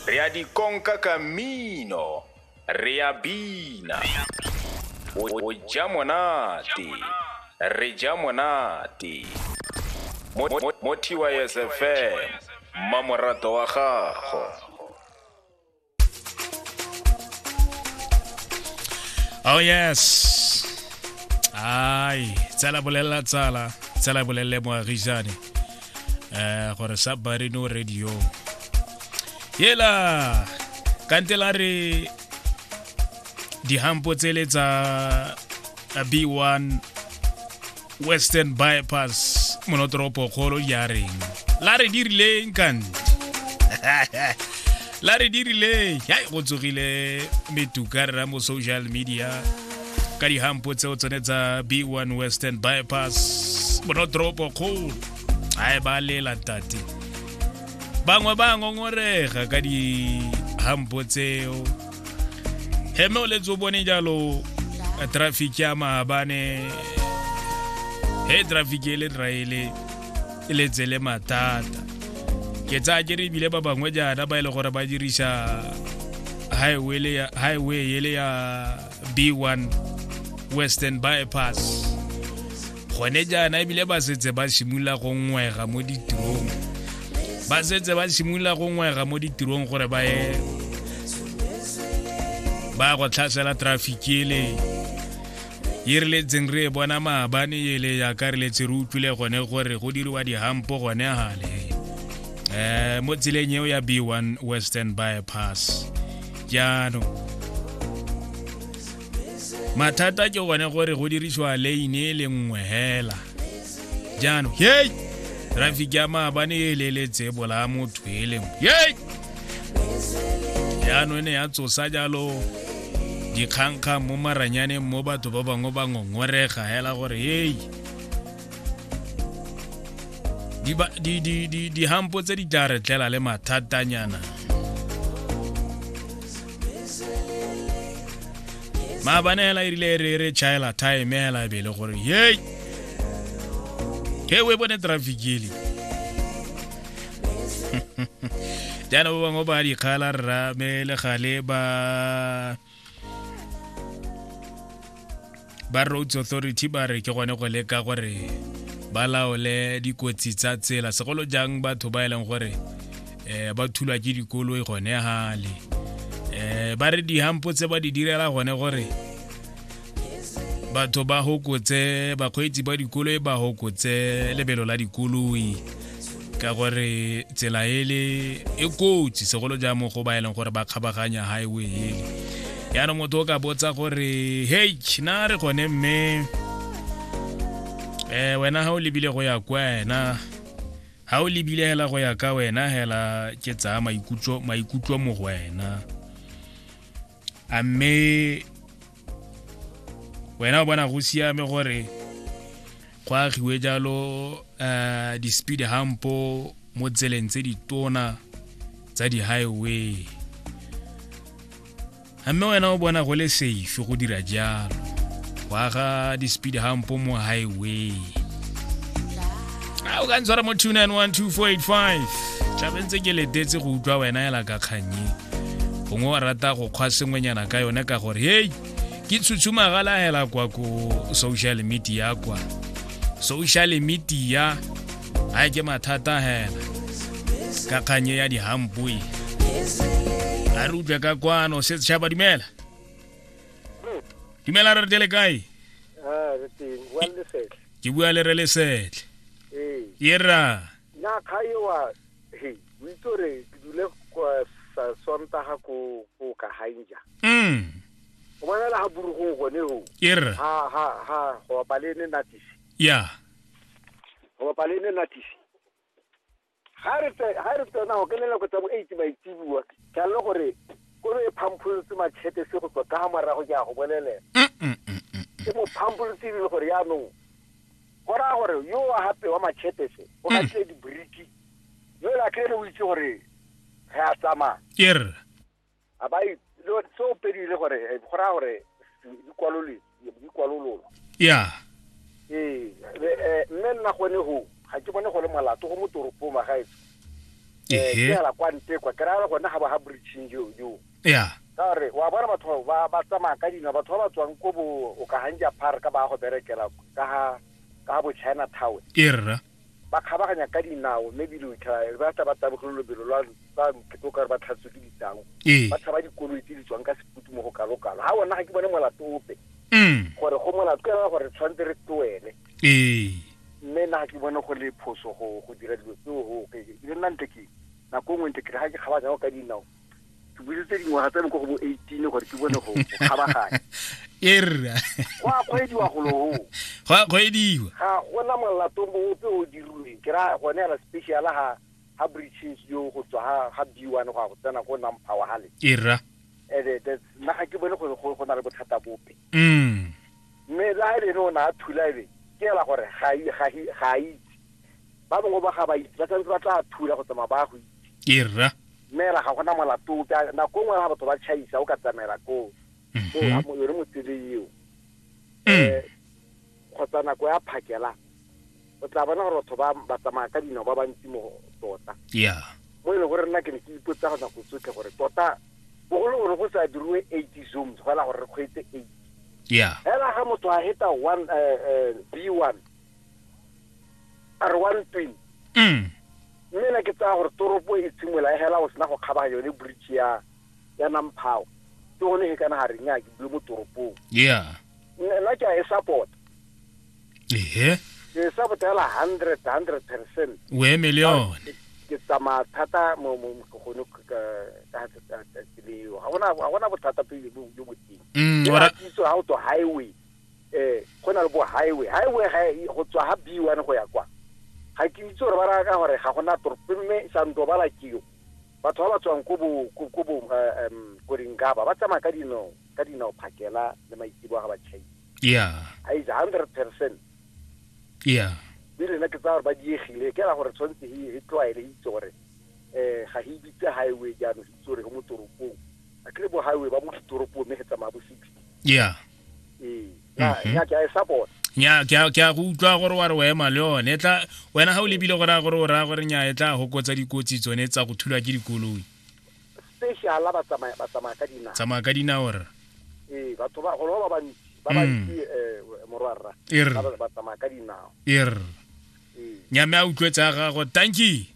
re a di konka ka mmino re a bina o ja monate re ja monate mo tys fm mmamoratwa wa gago Oh yes. Ai, tsala bolelela tsala, tsala bolelele moagisane. Eh gore sa Barino Radio. Yela kantela re dihampo tsele tsa B1 western bypass monotoropo kgolo ya reng la re dirileng kante la re dirileng hai go tsogile metuka re mo social media ka dihampo tseo tsone tsa b1 western bypass monotoropo kgolo ai ba lela tate bangwe ba ngongorega ka dihampo tseo heme o letse o bone jalo traffic ya maabane he traffic e le traele e letse le mathata ke tsaya ke re ebile ba bangwe jaana ba e le gore ba dirisa highway le ya- highway ele ya b1 western bypass gone jaana ebile ba setse ba simolola go ngwega mo ditirong ba setse ba simolola go ngwega mo ditirong gore ba ye ba go tlhasela traffic ele e re letseng re e bona maabane ele yaka re letse re utlwile gone gore go diriwa dihampo gone gale um mo tseleng eo ya b one western bypass jaanong mathata ke gone gore go dirisiwa lane e le nngwe hela jaanong hei traffic ya maabane e leletse bolaya motho e le nngwe hei jaanong e ne ya tsosa jalo dikgangkgang mo maranyaneng mo batho ba bangwe ba ngongorega hela gore hei dihampo tse di tla re tlela le mathatanyana maabane hela e rile re re chaela time hela e bele gore yei he o e bone traffic ele jaana ba bangwe ba dikgala rra me le gale ba ba roads authority ba re ke gone go leka gore ba laole dikotsi tsa tsela segolo jang batho ba e leng gore um ba thulwa ke dikoloi gone gale um ba re dihampo tse ba di direla gone gore batho ba hokotse bakgweetsi ba dikoloi ba hokotse lebelo la dikoloi ka gore tsela ele e kotsi segolo jang mo go ba e leng gore ba kgabaganya highway ele yaanong motho o ka botsa gore hei na re gone mme um wena ga o lebile go ya kwa wena ga o lebile hela go ya ka wena hela ke tsaya maikutlo mo go wena a mme wena o bona go siame gore go agiwe jalo um di-speed hampo mo tseleng tse ditona tsa di-highway a mme wena o bona go le safe go dira jalo go aga di-speed hampo mo highway a o ka ntshwara mo 2912485 tlabe ntse ke letetse go utlwa wena ela ka kgannye gongwe wa rata go kgwa sengwenyana ka yone ka gore hei ke tshutshumagala hela kwa ko social media kwa social media ga ke mathata hela ka kgannye ya dihampoe a re utlwe ka kwano se tšhaba dumela dumela re re tele kae ah, ke bua le re lesetle ee ye rra na kga ewa he o itse gore ke dule kwa sa- sontaga ko ko kahainja mm o bonela ga burugong gone go ye rra ga ga ga go bapa le ne natisi ya go bapa le ne natisi Ga re tse ga re tsena go kenela go tsa bo eight maitsebua ke a le gore ko re phampholotse matšhete se go tswa ka morago ke a go bolelela ke mo phampholotse le gore yaanong go raya gore yo wa gape wa matšhete se o ga tle dibriki yo la kere o itse gore re a tsamaya a ba e, se o pedile gore eh, go raya gore dikwalololo ya ee eh, mme nna gone go ga ke bone go le molato go mo toropong magaetso fela kwa nte kwa ke raya gone ga ba ga breaching yo yo ya ka gore wa bona batho ba ba tsamaya ka dina batho ba ba tswang ko bo o ka hanja park ba go berekela ka ha ka bo china tower ke rra Ba kgabaganya ka dinao mme ebile o itlhela re ba tla ba tabogelo lobelo lwa ba nkete o ka re ba tlhatswe ke ditau. Ee. Ba tshaba dikoloi tse di tswang ka seputu mo go kalokalo. Ha bona ga ke bone molato ope. Mm. Gore go molato ke ra gore tshwantse re tloele. Ee. Mme na ga ke bone go le phoso go go dira dilo tseo go ke le nna ntle ke nako nngwe ntle ke ga ke kgabaganya ka dinao. ke busetse dingwaga tsa me ko go bo eighteen gore ke bone go kgabaganya erra go a kgwediwa goloo go a kgwediwa ga gona molato mope o dirilweng ke ra gone yana special ga ga breaches yo go tswa ga ga b one go ya go tsena ko nampower gale erra ande nna ga ke bone gore go go na le bothata bope mm mme le ga e lene o ne a thula ebe ke ela gore ga i- ga i- ga a itse ba bangwe ba ga ba itse ba tshwanetse ba tla thula go tsamaya ba ya go itse erra Dumela, ga gona molato ope. A- Nako nngwe ga batho ba tšhaisa, o ka tsamaela koo. So, Mhm. a mo yone motsele eo. Mm. Eh, kgotsa nako ya phakela, o tla bona gore batho ba ba tsamaya ka dinao ba bantsi mo go tota. Yeah. mo e leng gore nna ke ne ke ipotsa go nako tsotlhe gore tota bogolo gore go sa diriwe eighty zones go ela gore re kgweetse eight Yeah. fela ga motho a heta one eh, eh, b one a re one twin Mm. Mme na ke tsaya gore toropo e tshimola hela go sena go kgabaganya yone bridge ya ya Namphao ke gone he kana ga re nya ke bule mo toropong yeah Nna- nna ke a e support ehe ke e support hela hundred hundred percent o emele yone ke tsamaya thata mo mo mo- gone ka ka- ka- ka- ka tseleo ga gona ga gona bothata pele bo jo boteng Mm, Ke ora- ratiso ga o to highway Eh, go na le bo highway. Highway ga e- go tswa ha B1 go ya kwa. Ga ke itse gore ba raya ka gore ga gona toropo mme Sandobala ke yo. Batho ba ba tswang ko bo ko ko bo eh, em, ko Dingaba ba tsamaya ka dinao ka dinao phakela le maitsebo ga ba chai. ya A is 100%. ya Mme lena ke tsaya gore ba diegile ke ra gore tshwanetse he he tlwaele he itse gore eh ga he bitse highway jaanong he itse gore go mo toropong. A kere bo highway ba mo ditoropong mme he tsamaya bo 60. ya ee ya Mhm. ya ke a e support nya ke a- ke a go utlwa gore wa re o ema le yone e tla wena ga o lebile gore a gore o raya gore nya e tla gokotsa dikotsi tsone tsa go thulwa ke dikoloi special ba tsamaya ba tsamaya ka dinao tsamaya ka dinao rra ee batho ba golo ba bantsi ba Mm. bantsi eh, morwarra E re. ba ba- ba tsamaya ka dinao e rra ee nya mme a utlwetse a gago tanki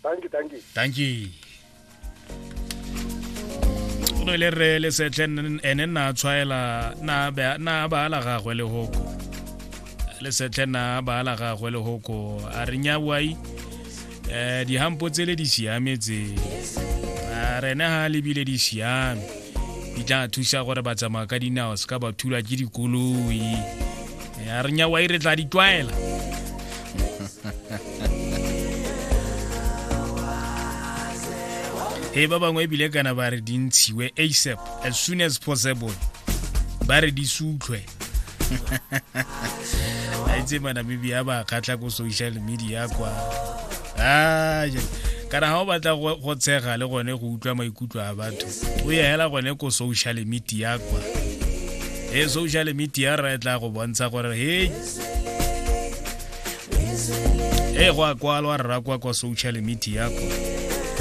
danki danki danki o ne le re le setlhe ene nna tshwaela na baala gagwe le hoko le setlhe na baala gagwe le hoko a re nyawai um eh, dihampo tsele di siametse a rene ga lebile di siame di tla thusa gore ba tsamaya ka dinao se ka ba thula ke dikoloi ya re nyawa e re tla di tlwaela he ba bangwe ebile kana ba re di ntshiwe asap as soon as possible ba re di sutlhwe a itse manamibia ba kgatlha ko social media kwa kana ga o batla go tshega le gone go utlwa maikutlo a batho o ya hela gone ko social media kwa e social media ra e tla go bontsha gore he e go a kwalwa rra kwa kwa social media kwa